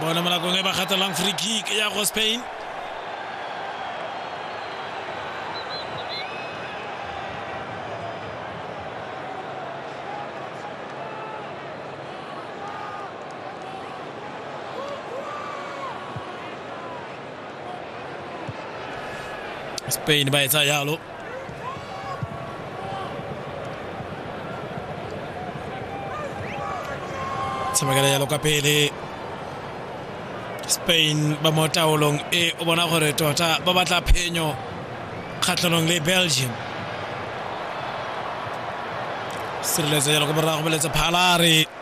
bone mo nakong e ba gatelang free kick ya go spain Spain by Zayalo. tshamekela yalo ka pele spain ba mo taolong e o bona gore tota ba batla phenyo kgatlhanong le belgium sireletso yalo ko morago beletsa phalare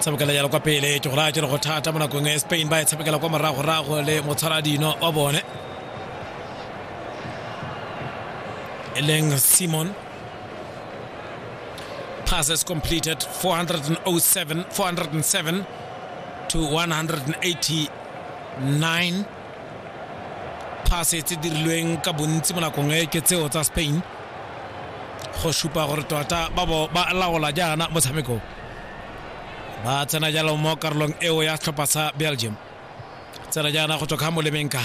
tshamekela jalo kwa pele ke go raya kere go thata mo nakong e spain ba e tshamekela kwa moragorago le motshwaradino wa bone e leng simon passes completed 407 407 to 189 phase tse dirilweng ka bontsi mo nakong e ke tseo tsa spain go supa gore tota ba bo ba laola jaana motshameko ba tsena jalo mo karolong eo ya tlhopha sa belgium tsena jaana go tswa ka molemeng ka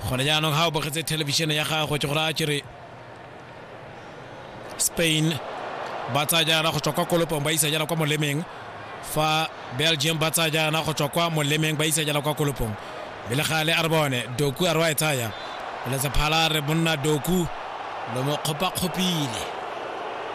gone jaanong ga o bogetse thelebišene ya gago ke gore a kere spain ba tsaya jaana go tswa kwa kolopong ba isa jaana kwa molemeng fa belgium ba tsaya jaana go tswa kwa molemeng ba isa jaana kwa kolopong pele gale a re bone doku a re wa e tsaya letsa phala re monna doku lo mo kgopakgopile